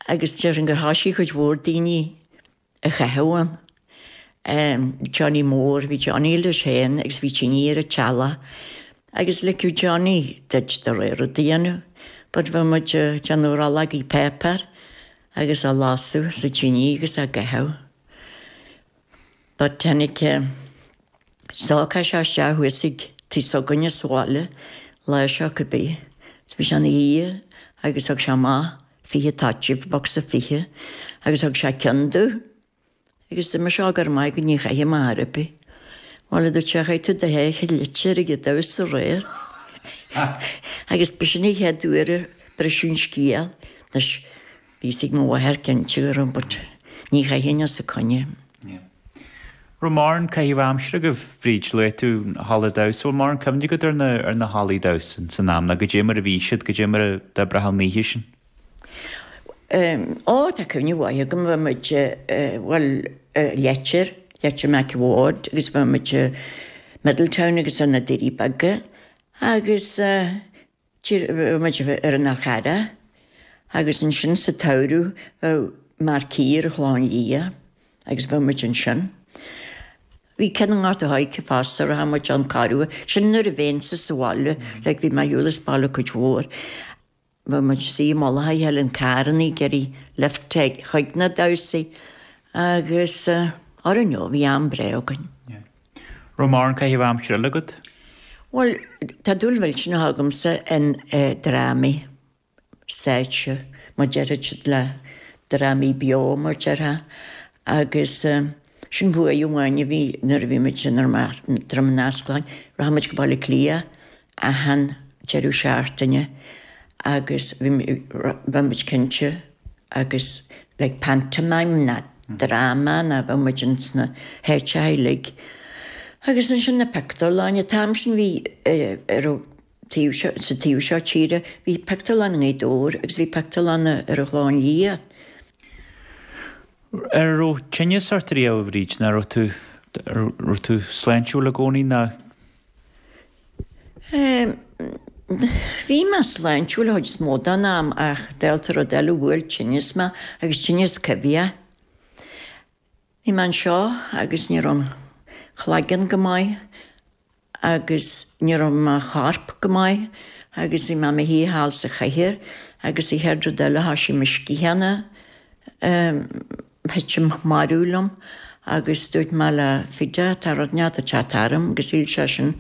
agus déarfainn gur thoisigh cuid mhór daoine a chaitheamh ann. Ehm, Johnny Mór, bhí Johnny leis féin agus bhí tine ar an teallach agus ligeadh Johnny duit do rogha rud a dhéanamh but bheadh muid a' déanamh rollógaí páipéir agus á lasadh sa tine agus á gcaitheamh. But tháinig stócach isteach thuas ag tigh s'againne sa bhaile lá seo cá bith. Bhí sé ina dhiaidh agus thug sé amach fiche toitín, bocsa fiche, agus thug sé ceann domh agus dúirt mise go raibh maith agat ní chaithim ar bith. Bhuel a dúirt sé chaith tú do sháith i Leitir ag an damhsa aréir agus b'shin an chéad uair a briseadh an scéal. Anois Bhí a fhios ag mo mháthair cinnte but ní chaithfinn os a coinne. Yeah. Raibh mórán caithimh aimsire agaibh, Bríd, luaigh tú na hallaí damhsa, bhfuil mórán cuimhne agat ar na, ar na hallaí damhsa san am, ná goidé mar a bhí siad, goidé mar a d'oibreochadh an oíche sin? Ehm, á tá cuimhne mhaith agam, bhí muid eh, bhuel eh Leitir, Leitir Mac a' Bhaird agus bhí muid eh Middletown agus eh na Doirí Beaga agus eh, Bheadh muid ar Anagaire agus ansin sa tsamhradh bheadh marquee ar an Chlochán Liath agus bheadh muid ansin. Bhí ceann i nGort a' Choirce fosta a raibh muid ann corruair, sin nuair a bheinnse sa bhaile, like bhí mé ar shiúl as baile cuid mhór. Bheadh muid suí i mullach Helen Carn ag iarraidh lift chuig na damhsaí agus I don't know, bhí am breá againn. Raibh mórán caitheamh aimsire eile agat? Bhuel, tá dúil mhillteanach agamsa in drámaí stáitse, mar a deir siad le drámaí beo mar déarfá, agus sin buaidh amháin a bhí nuair a bhí muid in Dromiskin, Droim Ineasclainn, rachadh muid go Baile Átha Cliath achan deireadh seachtaine agus bheadh muid cinnte agus like pantomime ná drama ná bheadh muid ins na háiteachaí uilig agus ansin na pictiúrlanna, an t-am sin bhí ar an taobh seo, sa taobh seo tíre bhí pictiúrlann i nGaoth Dobhair agus bhí pictiúrlann ar an Chlochán Liath. Ar raibh tinneas ort riamh, a Bhríd, ná raibh tú, raibh tú sláintiúil i gcónaí ná? Bhí mé sláintiúil an chuid is mó den am ach dálta rud eile bhuail tinneas mé agus tinneas coimhthíoch. Bhí mé anseo agus ní raibh an claigeann go maith agus ní raibh mo chorp go maith agus bhí mé i mo shuí thall sa chathaoir agus an chéad rud eile thoisigh mo sciatháin a thuitim marbh liom agus dúirt mé le Fidea tá rud inteacht ag teacht orm agus shíl seisean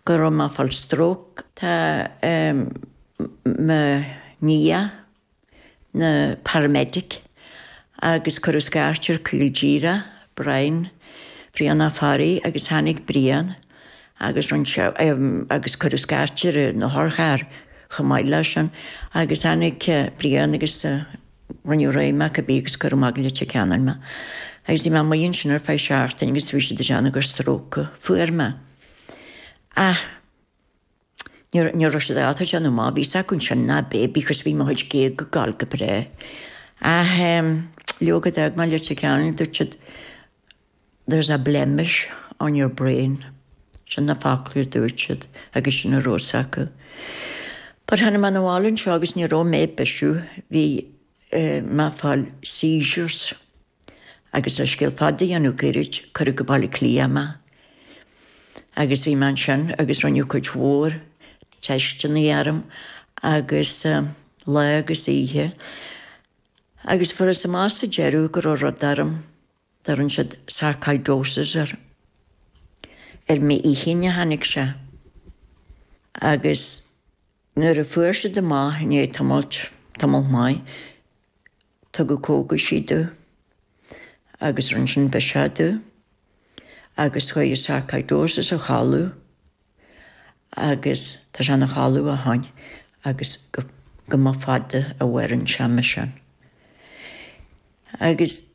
go raibh mé ag fáil stróc. Tá mo nia ina paramedic agus cuireadh scairt air caol díreach, Brian, Brian Ó Fearraigh agus tháinig Brian agus rinne sé agus cuireadh scairt ar an otharcharr chomh maith le sin agus tháinig Brian agus Rinneadh réidh mé cibé agus cuireadh mé go Leitir Ceanainn mé. Agus bhí mé amuigh ansin ar feadh seachtaine agus bhí siad ag déanamh gur stróc a fuair mé. Ach níor, ní raibh siad ábalta déanamh amach, bhí 's acu ansin nach b'é, because bhí mo chuid géaga ag goil go breá. Ach eh, leoga d'fhág mé Leitir Ceanainn, dúirt siad, There's a blemish on your brain, sin na focla a dúirt siad agus sin a raibh 's acu. But tháinig mé abhaile anseo agus ní raibh mé ag bisiú, bhí mé ag fáil seizures agus le scéal fada a dhéanamh goirid, cuireadh go Baile Átha Cliath mé agus bhí mé ansin agus rinneadh cuid mhór teisteanna orm agus lá agus oíche agus fuarthas amach sa deireadh go raibh rud orm. dtabhrann siad sarcoidosis air. Ar m'inchinn a tháinig sé agus nuair a fuair siad amach i ndiaidh tamailt, tamall maith, tugadh cógaisí domh agus rinne sin biseach domh agus chuaigh an sarcoidosis a chodladh agus tá sé ina chodladh ó shoin agus go mba fada a mhaireann sé mar sin. Agus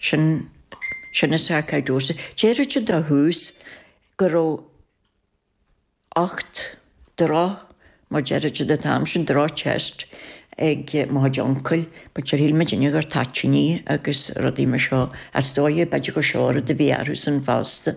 Sin sin sarcoidosis. Déarfadh siad ó thús go raibh ucht, droch, mar déarfadh siad an t-am sin, droch-chest ag mo chuid uncail, but sure shíl muid uilig gur toitíní agus rudaí mar seo. Is dóiche b'fhéidir gur seo an rud a bhí orthusan fosta.